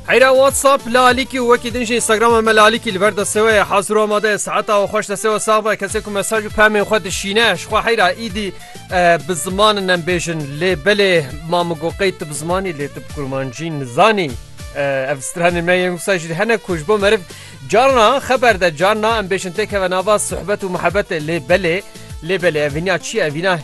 Heyra WhatsApp la alîkî û wekî din jî Instagrama me la alîkî li ber destê we ye hazir û amade ye seheta û xweş destê we sax be kesê ku mesaj û pemên xwe dişîne ji xwe heyra îdî bi zimanin em bêjin lê belê ma min got qey tu bi zimanî lê tu bi kurmancî nizanî ev stranê me yên wisa jî hene ku ji bo meriv carna xeber de carna em bêjin têkeve nava sohbet û mihebetê lê belê lê belê ev vînya çi ye ev vîna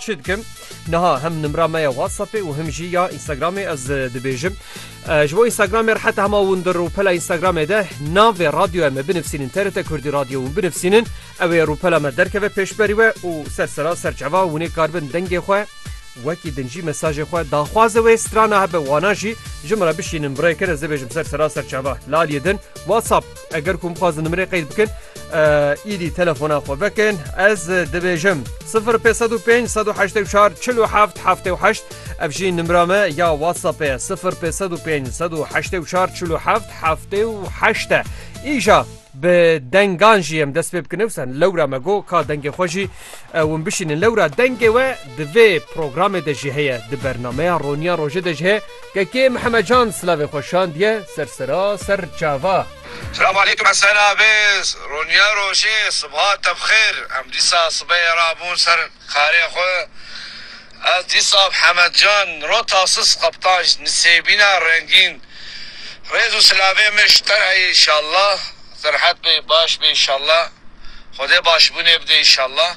Çi dikim? Niha him nimra me ya WhatsAppê û him jî ya Instagramê ez dibêjim. Ji bo Instagramê rihete hema windir û pela Instagramê de navê radyoya me binivîsînin TRT Kurdî Radyo û binivîsînin ew ê rûpela me derkeve pêşberî we û ser sera ser çava hûnê karibin dengê xwe wekî din jî mesajê xwe daxwaze wê strana hebe wana jî ji min re bişînin birêkin ez dibêjim ser sera ser çava laliyê din WhatsApp Eger ku bixwazin nimirê qeyd bikin îdî telefona xwe vekin ez dibêjim 0554 ev jî nimra me ya WhatsAppê 0554 îja bi dengan jî em dest pê bikin sen lewra me got ka dengê xwe jî win bişînin lewra dengê we di vê programê de jî heye di bernameya roniya rojê de jî heye KK Mihemecan silavê xwe şandiye ser sera ser çava. Selamu aleykum Hesen abi, roniya rojê sibha te bi xêr, em dîsa sibeyê re bûn ser karê xwe, ez dîsa bi Hemed Can rota sis qeptan ji nisêbîna rengîn, rêz û silavê min ji te heye înşallah, serhet be baş be înşallah, xwedê başbûnê bide înşallah.